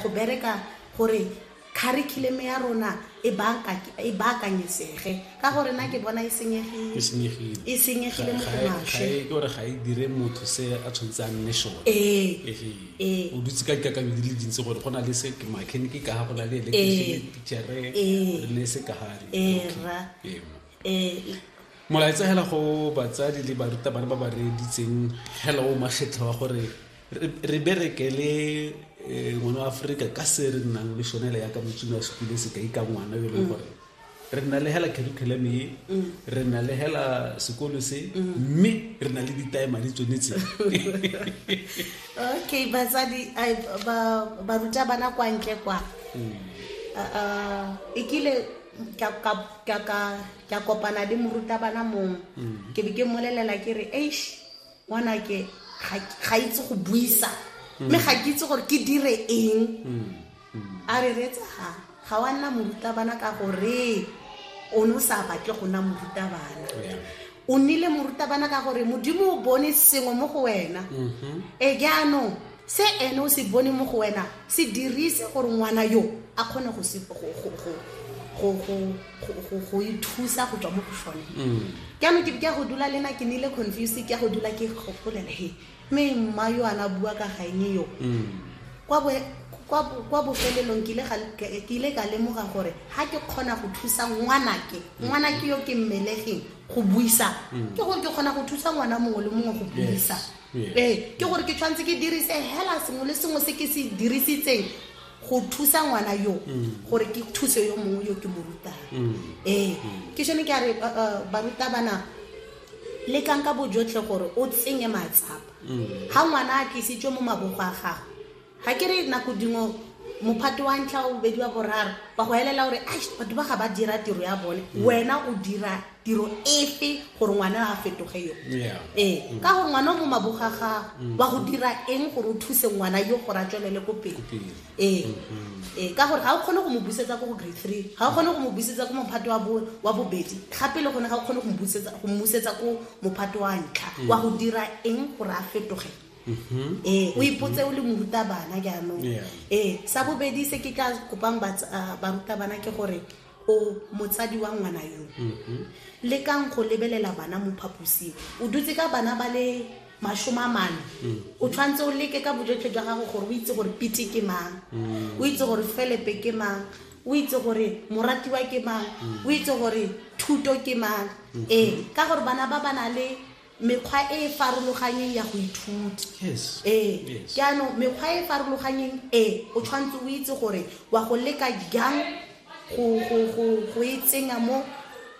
go bereka gore curriculum ya rona e, e baakanyesege ka gore na ke bona e senyegile e senyegile mo gomashe ke gore ga e dire motho se a tshwanetse a nne sone ee. Ee. o dutse ka dikakanyo di le dintsi gore go na le se mechanic ka ga go na le electrician ee. teachere le se ka gare molaetsa hela go batsadi le barutabana ba ba reeditseng hela o makgetlho wa gore re bereke le eh, ngwana wa aforika ka se re nnang le sone le yaka motsini wa sekole se ka ika ngwana yo e leng mm. gore re nna le hela curriculum e mm. re nna le hela sekolo se mm. mme re na le ditaema di tsone tse okay batsadi ba ruta bana kwa ntle kwa e kile ka kopana le morutabana mongwe ke be ke mmolelela ke re eish ngwanake ga itse go buisa mme ga ke itse gore ke dire eng a re reetsa ga ga wa nna morutabana ka gore o ne o sa batle go nna morutabana o nnile morutabana ka gore modimo o bone sengwe mo go wena e jaanong se ene o se bone mo go wena se dirise gore ngwana yo a kgone go ithusa go tswa mo go sone jaanong mm. ke ya go dula le na ke nile confuse ke ya go dula ke gopolela he mme mma yo ana bua ka gaene yo mm. kwa bofelelong ke ile ka lemoga gore ga ke kgona go thusa ngwanake mm. ngwanake yo ke mmelegeng go buisa ke gore ke kgona go thusa ngwana mongwe le mongwe go buisa ee ke gore ke tshwanetse ke dirise hela sengwe le sengwe se ke se dirisitseng go thusa ngwana yo mm. gore ke thuse yo mongwe yo ke mo rutang mm. ee mm. ke sone ke a re uh, uh, barutabana le tlang ka bojotlhe gore o tsenye matsapa ga ngwana a tlisitswe mo mabogo a gago ga ke re nako dingwe mophato wa ntlha wa bobedi wa boraro ba go helela gore a batho ba ga ba dira tiro ya bone mm. wena o dira tiro efe gore ngwana a fetoge yo ee mm. ka gore ngwana o mo maboga gago mm. wa go dira eng gore o thuse ngwana yo gore a tswelele ko pele ee mm-hmm. ee ka gore ga o kgone go mo busetsa ko go grade three ga o kgone go mo busetsa ko mophato wa bobedi gape le gone ga o kgone go mmusetsa ko mophato wa ntlha wa go dira eng gore a fetoge Mm-hmm. ee o ipotse o le morutabana jaanong ee sa bobedi se ke tla kopang ah, barutabana ke gore o motsadi wa ngwana yo mm-hmm. le kang go lebelela bana mo phaposing o dutse ka bana ba le masome a mane mm. o tshwanetse o leke ka bojotlhe jwa gago gore o itse gore pete ke mang mm. o itse gore felepe ke mang o itse gore moratiwa ke mang mm. o itse gore thuto ke mang mm-hmm. ee ka gore bana ba ba na le Mekgwa e e farologanyeng ya go ithuta. Yes. Ee. Yes. Jaanong mekgwa e e farologanyeng e, o tshwanetse o itse gore wa go leka jang go, go, go, go e tsenya mo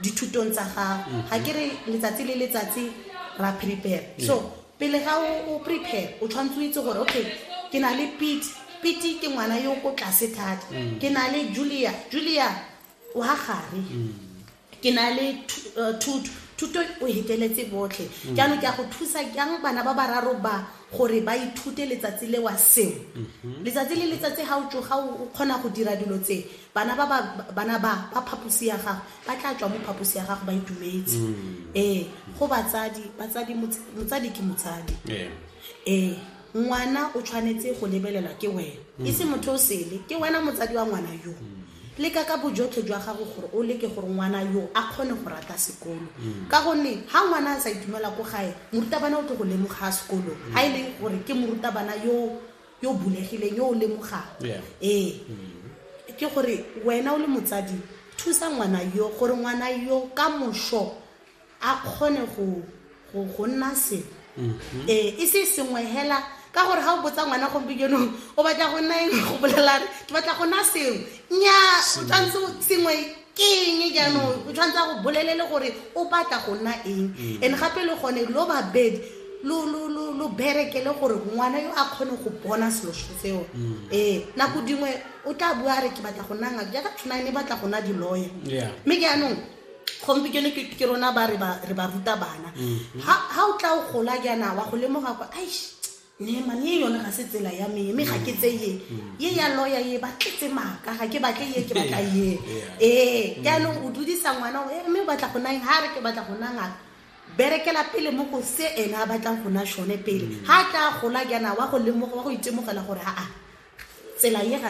dithutong tsa gago. Ga ke re letsatsi le letsatsi ra prepare. So, pele ga o, o prepare, o tshwanetse o itse gore, okay, ke na le Pete. Pete ke ngwana yo o ko tlase thata. Ke na le Julia. Julia wa gare. ke na le eh, thuto thuto o heteletse botlhe mm. jaanong ke a go thusa jang bana ba bararo ba gore ba ithute letsatsi le wa sengwe mm-hmm. letsatsi le letsatsi ga o tsoga o kgona go dira dilo tse bana ba bana ba ba phaposi ya gago ba tla tswa mo phaposi ya gago ba itumetse mm. ee go batsadi batsadi motsadi ke motsadi ee ngwana o tshwanetse go lebelelwa ke wena e se motho o sele ke wena motsadi wa ngwana yo mm. Leka ka bojotlhe jwa gago gore o leke gore ngwana yo a kgone go rata sekolo. Ka gonne ha ngwana a sa itumela ko gae, morutabana o tlo go lemoga sekolong. Ha e le gore ke morutabana yo yo bulegileng, yo o lemogang. Yeah. Ee. Ke gore wena o le motsadi, thusa ngwana yo gore ngwana yo ka moso, a kgone go nna se mhm. ee e se sengwe hela ka gore ga o botsa ngwana gompikenong o batla go nna eng go bolelane ke batla go nna sengwe nya o tshwanetse sengwe ke eng jaanong mm. o tshwanetse go bolelele gore o batla go nna eng mm. and gape le gone lo babedi lo bereke le gore ngwana yo a kgone go bona selo seo mm. ee nako dingwe o tla bua re ke batla go nna ngaka jaaka tshwanane batla go nna di-lawyer mme ke anong gompieno ke ke rona ba re ba re ba ruta bana ha ha o tla o gola jaana wa go lemoga kwa aish ne mane ye yone ga se tsela ya me mme ga ke tse ye ye ya loya ye ba tletse maaka ga ke batle ye ke batla ye ee jaanong o dudisa ngwana o, "Eh, mme o batla go nang ha re ke batla go nang ngaka berekela pele mo go se ene a batlang go na sone pele ha tla gola jaana wa go lemoga wa go itemogela gore aa tsela ye ga